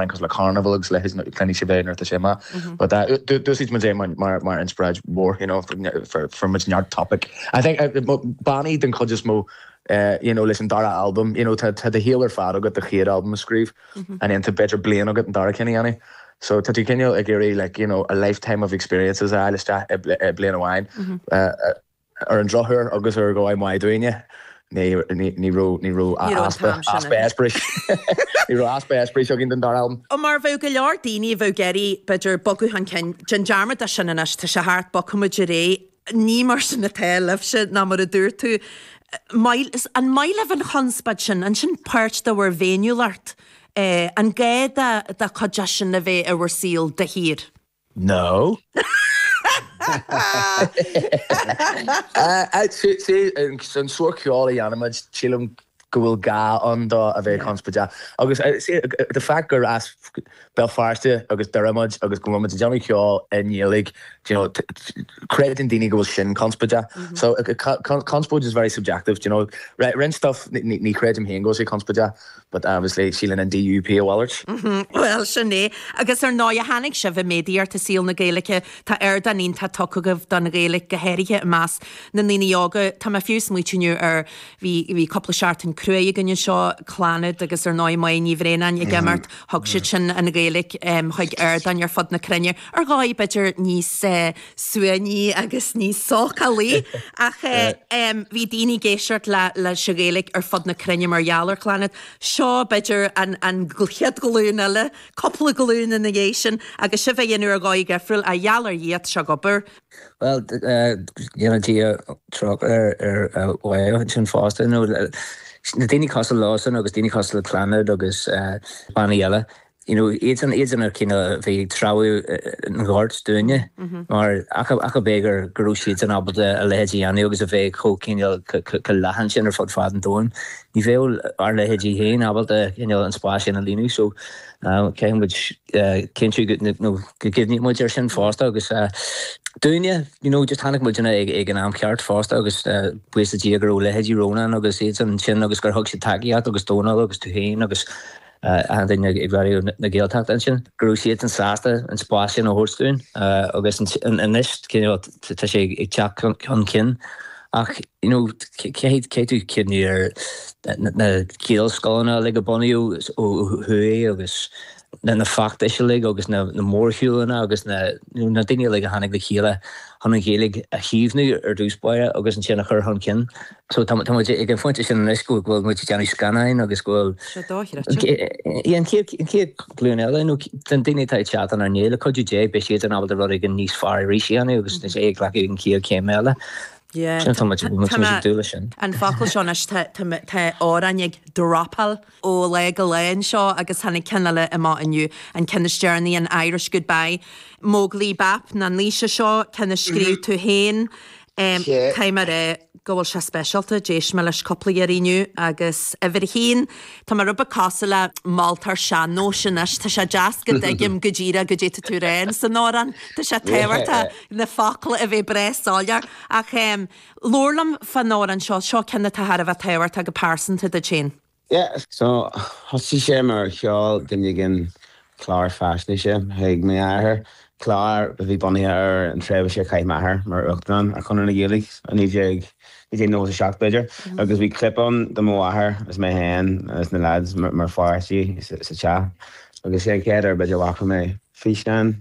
Crystal Carnival agus le his clan sibh é nuair atá sé maith. But uh, do- d'úsáid muid é mar, mar, mar inspioráid mhór, you know, for, ne- for, for muid neart topic. I think, uh, mo- bannaí den chuid is mó, eh, you know, leis an dara albam, you know, tá, tá do shaol ar fad agat le do chéad albam a scríobh, and then tá b'fhéidir bliain agat an dara ceann a dhéanamh. So tá tú cineál ag iarraidh, like, you know, a lifetime of experiences a fháil isteach i bli- i bliain amháin. Uh, uh, Ar an drochuair, agus ar dhóigh mhaith dúinne, ní raibh easpa eispéiris againn don dara albam. Mar a bheadh go leor daoine a bheadh ag iarraidh, b'fhéidir, bogadh chun cinn, déan dearmad dó sin anois, tá sé thart, bogfaimid ar aghaidh. Ní mar sin atá, libhse, nó mar a dúirt tú, an maith libh an chonspóid sin? An sin páirt de bhur bhféiniúlacht, an gá dó cuid de sin a bheith ar bhur saol de shíor? An sórt ceoil a dhéanaimid, sílim go bhfuil gá ann dó a bheith conspóideach agus the fact gur as Béal Feirste agus Doire muid agus go bhfuilmid ag déanamh ceoil i nGaeilge, creideann daoine go bhfuil sin conspóideach. So conspóid is very subjective, you know. Roinnt stuff ní chreidim féin go bhfuil sé conspóideach. But obviously síleann an DUP a mhalairt. Bhuel, sin é. Agus ar ndóigh, tháinig sibh i méadaíocht i saol na Gaeilge. Tá ardán iontach tugtha agaibh don Ghaeilge, go háirithe i measc na ndaoine óga. Tá mé fiú ag smaoitiú inniu ar, bhí, bhí cúpla seachtain cruaidh againn anseo, Clannad agus ar ndóigh Máire Ní Bhraonáin ag imeacht, thug siadsan an Ghaeilge chuig ardáin ar fud na cruinne, ar dhóigh b'fhéidir níos eh, suaimhní agus níos socraí ach bhí daoine ag éisteacht leis an Ghaeilge ar fud na cruinne mar gheall ar Clannad. Seo b'fhéidir an an chéad ghlúin eile, cúpla glúin ina dhiaidh sin agus sibhse á dhéanamh ar dhóigh dhifriúil ach is geall ar dhraíocht seo ag obair. Bhuel go ndéana Dia trócaire ar ar Mháire ansin fosta nó daoine cosúil léise agus daoine cosúil le Clannad agus bannaí eile, you know, iadsan iad na cinn a bhí ag treabhadh an ghoirt dúinne, mar ach ab é go go raibh siadsan ábalta a leithéid a dhéanamh agus a bheith chomh cineál chomh leathan sin ar fud fad an domhain. Ní bheadh ár leithéidí féin ábalta cineál an spás sin a líonadh, so caithfidh muid cinntiú go, you know, go gcuimhníonn muid air sin fosta agus dúinne, you know, just tháinig muid ina ag an am ceart fosta agus buíochas le Dia go raibh leithéidí Rónán agus iad ansin agus gur thug siad tacaíocht agus Dónall agus tú féin agus daoine ag Raidió na Gaeltachta ansin go raibh siadsan sásta an spás sin a thabhairt dúinn agus anois tá sé ag teacht chun cinn ach caithfidh tú cuimhniú ar na Gaelscoileanna uilig a bunaíodh ó thuaidh agus na feachtais uilig agus na mórshiúlanna agus na daoine uilig a tháinig le chéile chun an Ghaeilge a chaomhnú ar dtús báire agus ansin a chur chun cinn. So tá muid ag an phointe sin anois go bhfuil muid ag déanamh scannáin agus go bhfuil, Seo dóchreidte. yeah, an chéad, an chéad ghlúin eile, nó den daoine atá ag teacht inár ndiaidh, le cuidiú Dé, beidh siad in ábalta rud éigin níos fearr arís a dhéanamh agus beidh siad ag glacadh an chéad chéim eile. Yeah, Sin atá muid, tá- muid tá muid ag mé- dúil leis sin. An focal seo anois, tá, tá, mé- tá amhráin ag dropáil ó lá go lá anseo agus tháinig ceann eile amach inniu, an ceann is deireanaí, an Irish Goodbye, Móglaí Bap nó Naoise, seo ceann a scríobh tú féin. Tá mé ag rá go bhfuil sé speisialta, d'éist mé leis cúpla uair inniu agus uimhir a haon, tá mé rud beag cosúil le moltóir sean-nóis anois, tá sé deas go dtuigim go díreach cad é atá tú ag rá san amhrán, tá sé tábhachtach na focla a bheith breá soiléir ach. Labhair liom fán amhrán seo, seo ceann atá thar a bheith tábhachtach go pearsanta duit féin. Yeah, so thosaigh sé mar sheol duine éigin clár faisnéise chuig m'athair, clár a bhí bunaithe ar an tréimhse a chaith m'athair mar Uachtarán ar Chonradh na Gaeilge i 1997 b'fhéidir, agus bhí clip ann de mo mháthair agus mé féin agus na lads mar pháistí sa teach, agus sé an chéad uair b'fhéidir a bhfaca mé físeán.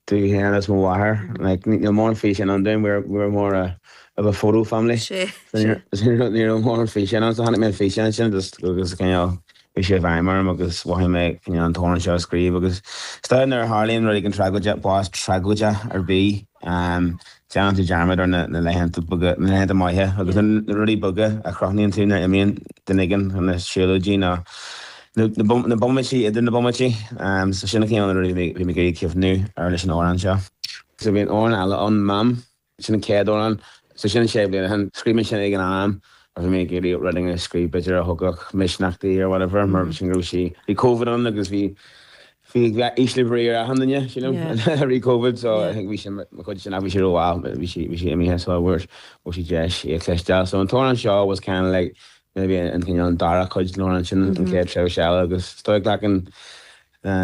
díom fhéin agus mo mháthair. Like ní raibh mórán físeáin ann dúinn, we were, we were more a, of a photo family. Sé, So ní sé. raibh, so ní raibh, ní raibh mórán físeáin ann, so chonaic mé an físeán sin just agus cineál, chuaigh sé i bhfeidhm orm agus mhothaigh mé cineál an t-amhrán seo a scríobh agus is dóigh nuair a tharlaíonn rud éigin tragóideach, bás tragóideach ar bith. Um, Déanann tú dearmad ar na laethanta beaga, na laethanta maithe agus na rudaí beaga a chrothnaíonn tú nuair a imíonn duine éigin chun na siúlóidí nó na bomaití idir na bomaití. So sin na cineál rudaí a bhí mé ag cuimhniú ar leis an amhrán seo. So bhí an amhrán eile ann, Mam, sin an chéad amhrán. So sin sé bliana ó shin. Scríobh mé sin ag an am a bhí mé ag iarraidh rud éigin a scríobh b'fhéidir a thógfadh misneach di or whatever mar sin go raibh sí, bhí Covid ann agus bhí, ísle brí ar achan nduine, sílim, Yeah. i rith Covid, so I Yeah. think bhí sé, mar chuid de sin, ach bhí sé rómhall, but bhí sí, bhí sí imithe, sula bhfuair sí deis é a chloisteáil. So an t-amhrán seo was kind of like maybe an cineál an dara cuid den amhrán sin, an chéad tréimhse eile, agus is dóigh glacann,